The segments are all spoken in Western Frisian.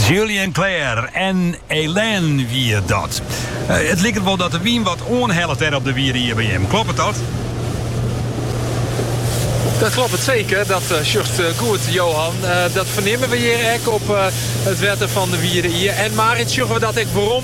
Julien Clerc en Hélène wie dat. Eh, het liket wel dat de wyn wat oanhellet dêr op de Wide Ie by jim. Kloppet dat? Dat kloppet seker, dat eh, sjochst eh, goed Johan. Eh, dat fernimme we hjir ek op it wetter fan de Wide Ie. En Marit, sjogge we dat ek werom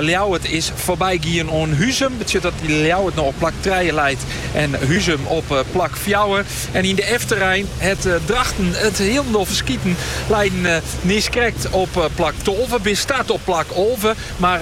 Ljouwert is foarby gien oan Huzum. Betsjut dat Ljouwert no op plak trije leit en Huzum op plak fjouwer. En yn de efterein hat Drachten it hielendal ferskiten. Leiden niiskrekt op plak tolve. Bin start op plak alve, mar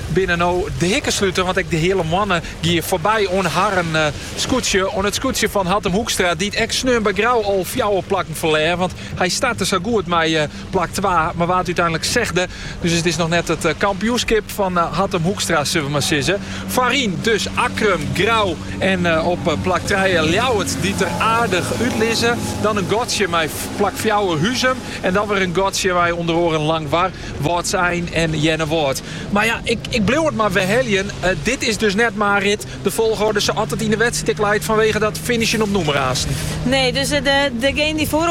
binne no de hikkesluter. Want ek de Heale Moanne gie foarby oan harren skûtsje. Oan it skûtsje fan Hattum Hoekstra, dy't ek sneon by Grou al fjouwer plakken ferlear. Want hy starte sa goed mei Plak twa, mar waard úteinlik sechsde. Dus it is noch net it kampioenskip fan Hattum Hoekstra, sil we mar sizze. Foaryn dus Akkrum, Grou en op plak trije Ljouwert dy't der aardich út lizze. Dan in gatsje mei plak fjouwer Huzum en dan wer in gatsje mei ûnder oaren Langwar, Wâldsein en Earnewâld. Mar ja, ik bliuw it mar werheljen, dit is dus net Marit de folgorde sa't it yn de wedstrijd ek leit fanwege dat finishen op nûmer aansen. Nee, dus degenen dy't foaroan.